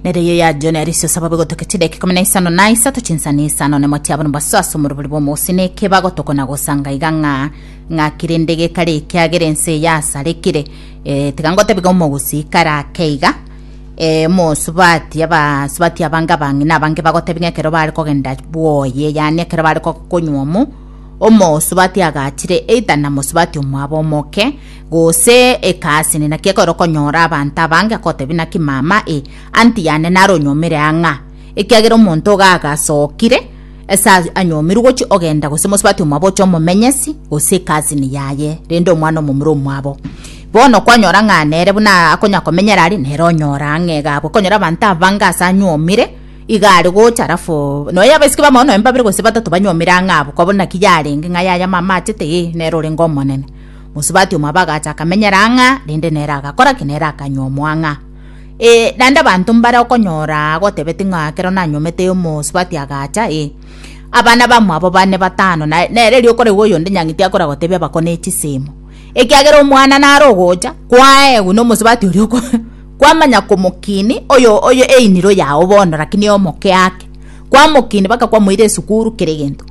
nere yo ya jone arisio saba bigoteke chideke kumi na isano na isato chinsani isano ne motiabo ne basaso muruburi bwa mosi ne keba gotoko na gosanga iga ng'a ng'a kirinde gekare ekiagera ense ya sarekire e, tiga ngotebiga omogusi karake iga e, mosubati abasubati abange abange na abange bagotebiga ekero bare kogenda bwoye yani ekero bare konywa omo omosubati agachire either na mosubati omwabo omoke Gose ekasi ne naki ekero okonyora abanto abange akotebi naki mama e anti yane naro onyomire ang'a ekiagera omonto iga agasokire ase anyomirwe gochi ogenda gose mosubati omwabo oche omomenyesi gose ekasi ni yaye rende omwana omomura omwabo bono kwanyora ng'a nere buna akonya komenyera ari nere onyora ang'e iga abwo okonyora abanto abange ase anyomire iga are gocha alafu nonya abasike bamao nonya babere gose batato banyomire ang'a abwo koba naki yarenge ng'a yaya mama achete ee nere orenge omonene. Mosubati omwabo agacha akamenyera ang'a, rende nere agakora ki? Nere akanywa omwang'a. Ee, naende abanto mbare okonyora agotebeti ng'a ekero nanyomete omosubati agacha, ee, abana bamwabo bane batano, na nere riroka oraigu oyonde nyang'iti akora gotebia bakone chisemo, ekiagera omwana nare ogocha, kwaegwa nomosubati oria kwamanya komokini oyo oyo einiro yao bono, rakini omoke ake. Kwamokini bakakwamoira esukuru kera egento.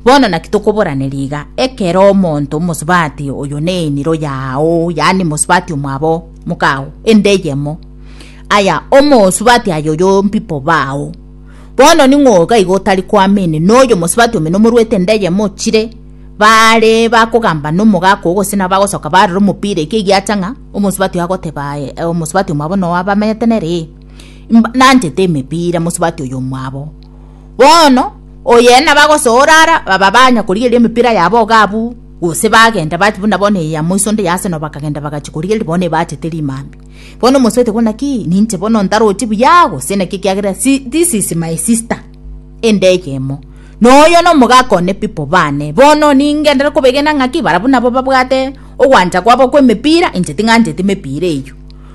Bono naki tokoboraneria iga, ekero omonto omosubati oyo n'eniro yao, yaani mosubati omwabo mokao, ende eyemo. Aya, omosubati aye oyo mpipo bao. Bono ning'o iga iga otari koamini noyo mosubati omino omoruete ende eyemo ochire, bare bakogamba nomogaka oo gose nabo bagosoka barora omopira ekiagio acha ng'a omosubati oyo agoteba aye, omosubati omwabo noo abamenyete nere? Mba- Nanchete emepira mosubati oyo omwabo. Bono oye nabagosoora ara baba banya korigereria emepira yabo iga abwo gose bagenda bati buna bono eye ya moiso onde ya Arsenal bakagenda bagachi korigereria bono ebachete rimambia. Bono omosubati ogo naki ninche bono ntarochi buya gose naki ekiagera si this is my sister ende eyemo. Noyo nomogaka one people bane. Bono ningenderere kobegena ng'aki barabwo nabo babwate ogwancha kwabo kw'emepira inche ting'ancheti emepira eyio.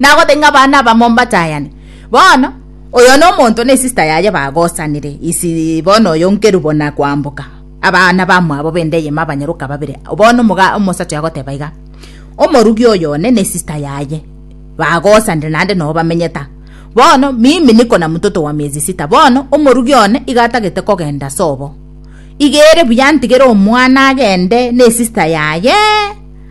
Nagotebie ng'a abana abamo mbatayane. Bono, oyo nomonto na esista yaye bagosanire isi bono oyo nkerubo na koamboka, abana bamwabo bende eyemo abanyaroka babere. Bono omoga omosacha oyo agoteba iga, Omorugi oyo one na esista yaye bagosanire naende noo bamenyete aa. Bono, mimi niko na mtoto wa miezi sita. Bono, omorugi one iga atagete kogenda sobo. Iga ere buya ntigere omwana agende na esista yaye.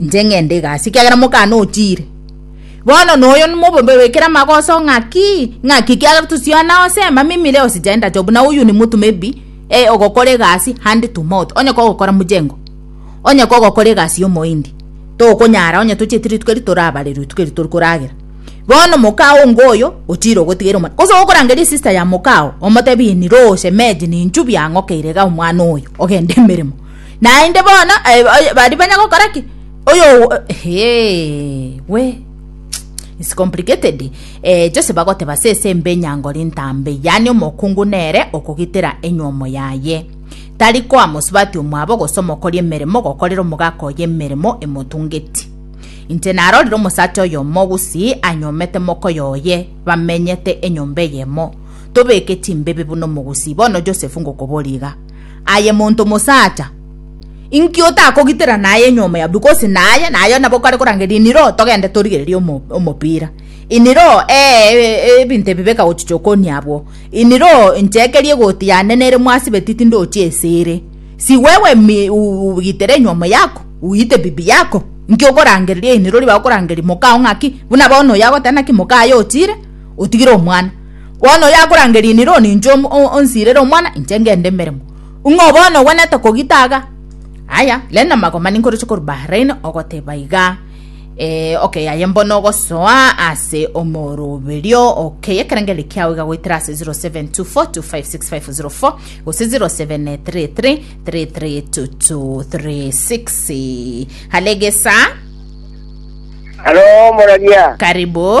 Inche ng'ende egasi, ekiagera mokane otiire. Bono noyo nomobombe bwekere amagoso ng'aki, ng'aki ekiagera tosiana ose emamimire ose gender job, na oyio nimotwe maybe eh ogokora egasi hand to mouth, onye kogokora mojengo, onye kogokora egasi ya omoindi, tokonyara onye tochieti rituko eri torabare rituko eri tori koragera. Bono mokaa onga oyo otiire ogotigera omwana. Gose ogorangeria sister ya mokaa oo, omotebie niroo shemeji ninchubi ang'okeire iga omwana oyo ogende emeremo. Naende bono eh, oy- baria banya gokora ki oyo Hey, we It's complicated eh, chose bagoteba sese mbe nyangori ntambe yani omokungu nere okogitera enyomo yaye tari koa mosubati omwabo gose omokori emeremo gokorera omogaka oye emeremo emotungeti inche narorire omosacha oyo mogusi anyomete mokoya oye bamenyete enyomba eyemo tobeke chimbibi buna omogusi bono josefu ngokoboriga Aye monto mosacha, inki otakogitera naye nywa omoyabibu? Gose naye naye nabo kare korangeria iniro togende torigererie omopira iniro ee ebinto ebi bikagochicha okonia abwo iniro inche ekeri egoti yane nere mwasibeti tindochi esere si wewe mi ugitere nywa omoyako uite bibi yako inki okorangeria iniro ribagokorangeria moka oo ng'aki buna bono oyo agoteba naki moka aye otire otigire omwana Bono oyakorangeria inire oo ninche onsiirere omwana, inche ngende emeremo. Ng'o bono ogwenerete kogita iga? Aya, rende amagoma ninkoroche korwa Bahrain ogoteba iga, Ee, okay, aye mbono ogosoa ase omoroberio, okay, ekerengerero kiao iga goetera ase 0724256504 gose 0733332236. Halo, egesaa. Halo, omoraria. Karibu.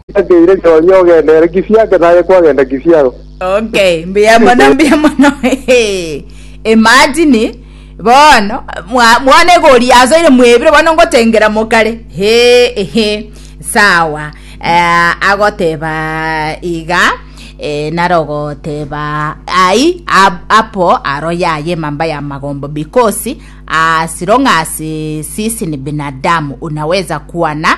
Ngeire Nyoonye ogende ere Kisiake naye kwagenda Kisiago. Okay, mbuya mono mbuya mono Hehe. imagine bono mwa- mwana egori asoire mwebire bono ngotengera mokare he ehe sawa Eh, agoteba iga eh, narogoteba ai ab- apo aro yaye mamba ya magombo because as long as sisi ni binadamu unaweza kuwa na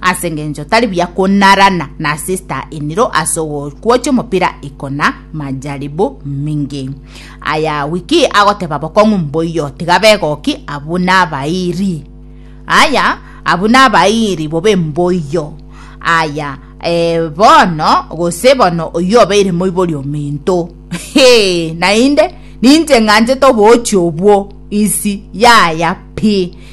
Ase engencho tari buya konarana na sister iniro ase ogokuocha omopira ikona majaribu mingi. Aya wiki agoteba bokong'u mboiyo tiga begoki abu nabairi. Aya abu nabairi bobe mboiyo. Aya eh, bono gose bono oyio obeire moibori ominto. Hee, nainde ninche ng'anchete obochi obwo isi yaya pi.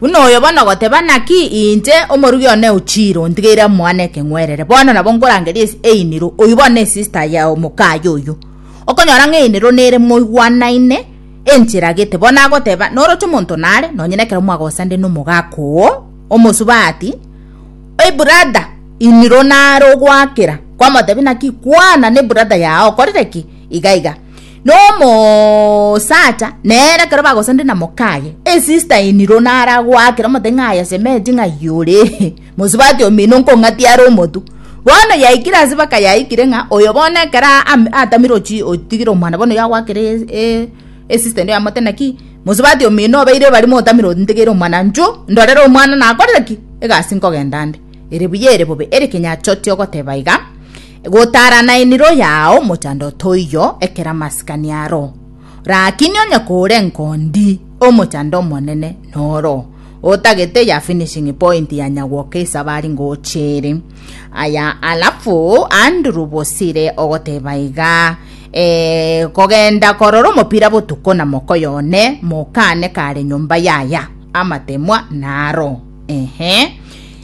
Buna oyo bono ogoteba, Naki inche, omorugi one o chiira, ontigeire amoa nekeng'werere, bono nabo nkorangeria einiro, oyio bono nesista y'omokaye oyio. Okonyora ng'a einiro nere moigwanaine, enchera gete, bono agoteba, Noroche omonto nare, nonye nekero mwagosande nomogaaka oo, omosubaa ati, Ebrada, iniro nare ogwakera, kwamotebia, Naki kwana, nebrada yao okorire ki? Iga iga. Nomosacha nere ekero bagosande na mokaye, esister in law nare agoakera omote ng'a aye sementi ng'a yore mosubati omino nkong'ati are omotu. Bono yaikire ase baka yaikire ng'a oyo bono ekero ame atamire ochi otigire omwana bono yagoakera e esister in law yamote naki mosubati omino obeire ebari motamire ontegeire omwana nchu ndorere omwana nakorire ki egasi nkogenda nde. Ere buya ere bobe ere kinyachoti ogoteba iga. Gotaarana eniro yao mochando toiyo ekera masikani aro. Rakini onye kore enkondi, omochando omonene noro, otagete ya finishing point ya nyagwoka esabari ngoche ere. Aya alafu Andrew Bosire ogoteba iga, eh, kogenda korora omopira botuko na mokoyo one, mokane kare nyomba yaya, amatemwa naro. Ehe.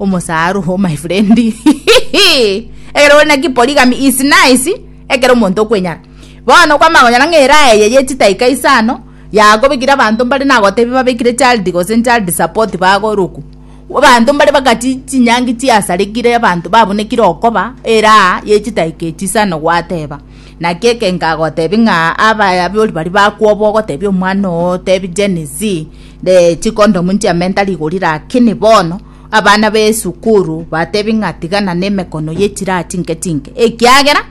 omosaru o my friend ekero ore naki polygamy is nice ekero omonto okwenyara bono kwamanya konyora ng'a eraha eye ye chitaika isano yakobekire abanto mbare nagotebi babekire child gose child support bagorokwa abanto mbare bagati chinyangi chiasarekire abanto babunekire okoba eraha ye chitaika echi isano gwateba. Naki ekenga agotebia ng'a abayabori baria bakwoba ogotebia omwana oo otebie Gen Z eh, chikondomu nchiamenta rigori rakini bono abana b'esukuru batebie ng'a tigana nemekono ye chiraha chinke chinke ekiagera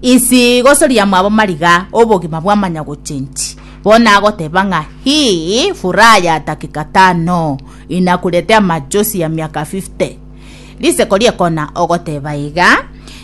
isi gosoria mwabo marigaa obogima bwamanya gochenchi bono agoteba ng'a hii furaha ya dakika tano inakuletea machozi ya miaka 50 risiko riekona ogoteba iga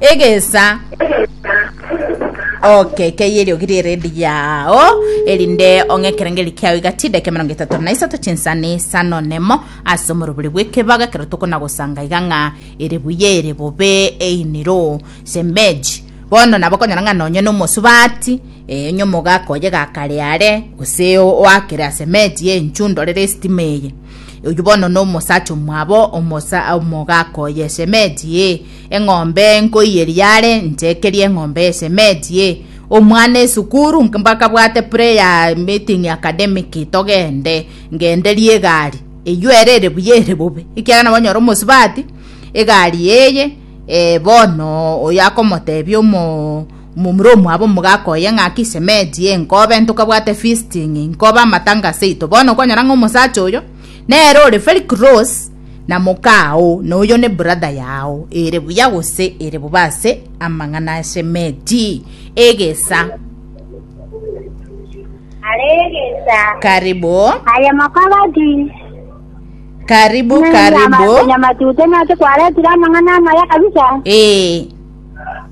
egesa oke keye eriogi rieredi yao erinde ong'e ekerengeri kiao igatida eke mirongo etato na isato chinsani sano nemo ase omorobori bw'ekebaga ekero tokonagosanga iga ng'a ere buya ere bobe einiro shemeji bono nabo okonyora ng'a nonye na omosubati eh, onye omogaka oye gakare are gose o- oakere ase emeji ya enchu ndorere estima eye oyio bono na omosacha omwabo omosa omogaka oye shemeji eh, Eng'ombe nkoiye riare, nchekerie eng'ombe esemetie. Omwana esukuru mbakabwate prayer meeting academic togende ngenderie egari eywo ere ere buya ere bobe ekiagera nabo nyora omosubati egari eye eh, bono oyo akomotebia omo omomura omwabo omogaka oye ng'aki semeti ye nkobe ntokabwate fisting nkobe amatangase aito bono okonyora ng'a omosacha oyo nere ore very close na mokaao, na oyo ne brother yao, ere buya gose ere bobe ase amang'ana a Shemeti, egesa. Are egesa. Karibu. Aye mokabati. Karibu, karibu. Nyamatute nase kwaretire amang'ana amaya kabisa. Eh.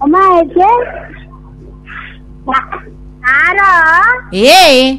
Omaete. Aro. Eh.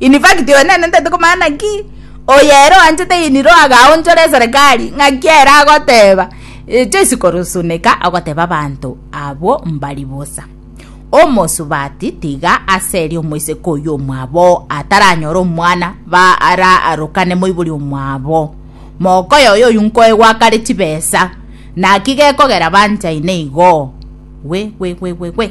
In fact oyo nene ntete komanya naki oyo ere oanchete ini ro agaonchora eserekari ng'aki ere agoteba echo chikorosuneka agoteba abanto abwo mbari bosa omosubati tiga ase erio omoiseke oyio omwabo ataranyore omwana ba ara arokane moibori omwabo mokoyo oyo oyu nkoegwakare chibesa naki gekogera banchaine igo we we we we we